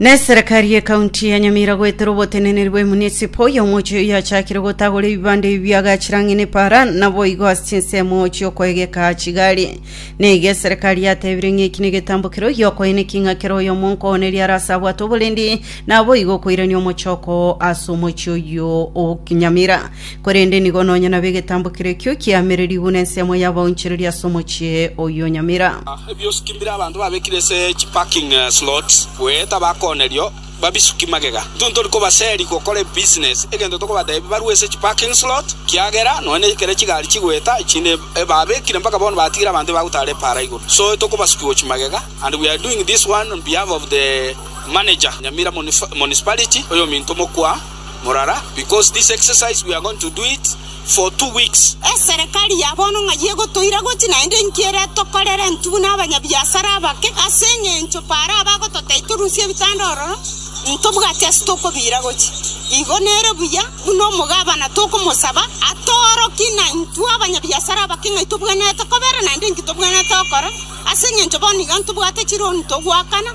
Na eserekari ye kaunti ya Nyamira goetera oboteneneri bwe munisipo oyo omochi oyo yachakire gotagora ebibande ebi biagachire ang'e ne para naboigo ase chinsemo chiokoegeka chigari. Na iga eserekari yatebire ng'a eki negetambo kere oyo okoyene king'a kere oyo omonkooneria are ase abwate oborendi naboigo okoirania omochoko ase omochi oyo o Nyamira. Korende nigo nonya nabe egetambo keria ekio kiamererigwe nensemo y'abaonchereri ase omochie oyio Nyamira. Ebiosuki mbire abanto babekire ase chi parking slots goeta abakoonerio babisuki magega. Intwe ntori kobaseri gokora ebusiness egento tokobatebi barue ase chi parking slot kiagera nonya ne ekero chigari chigoeta echinde ebabekire mpaka bono batigire abanto ebagotara epaara igoro so etokobasuki gochi magega and we are doing this one on behalf of the manager Nyamira municipality oyominto mokwa Morara, because this exercise we are going to do it for two weeks. Eserekari ya bono ng'ai egotoira gochi, naende inki ere tokorere intwe buna abanyabiasara abake? Ase engencho Paro abagototebia torusie ebitanda ororo, ntobwati ase tokobiira gochi. Igo nere buya buna omogabana tokomosaba atoorokie na intwe abanyabiasara abake ng'ai tobwenerete kobera naende inki tobwenerete gokora, ase engencho bono iga ntobwate chironi togoakana.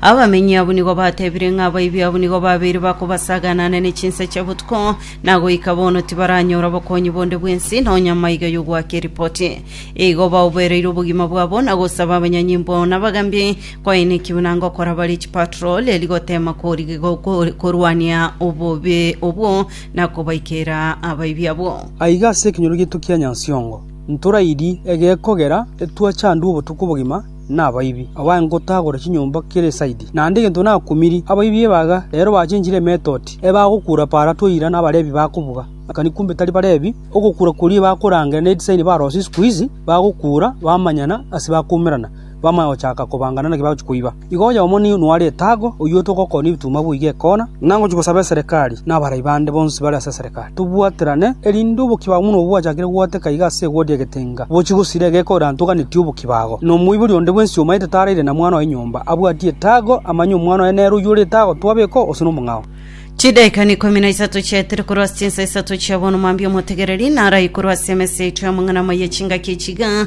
Abamenyi abwo nigo batebire ng'a abaibi abwo nigo babeire bakobasaganane ne chinsa chia botuko, na goika bono tibaranyora obokonyi bonde bw'ense, nonya maiga y'ogoaka eripoti. Igo baoboereire obogima bwabo na gosaba abanyanyimbo na abagambi koainekigwe na gokora bare chipatro reri gotema korigia go- korwania obobe obwo na kobaikera abaibi abwo. Aiga ase ekenyoro giaito kia Nyansongo, ntorairie egekogera etwachandwe obotuko bogima, nabaibi, abae ngotagora chinyomba kera esaidi, naende egento nakumirie abaibi ebaga, rero bachenchire emetoti, ebagokura para toira na Abalevi bakobuga. Akani kumbe tari Balevi, ogokura koria ebakorangera ne edisaini barose isiko izi, bagokura bamanyana ase bakumerana, bamanya gochaka kobangana naki bagochia koiba. Igo oye omo nigo noare etago, oyio togokonia ebituma boiga ekona, na ngochia gosaba eserekari, na abarai bande bonsi bare ase eserekari. Reka tobwaterane, erinde obokia bwabo buna obwachakire gogwateka iga ase egodia egetenga, bochie gosira egeka oirantoganeti obokia bwago, na omoibori onde bwensi omaete taraire na mwana oye nyomba, abwatie etago, amanye omwana oye nere oyio ore etago, twabekwa ose nomong'ao. Chidaeka n'ikomi na isato chiaetire korwa ase chinsa isato chia bono, mambia omotegereri narae korwa ase emesa yaito y'amang'ana amaya chingaki echi iga,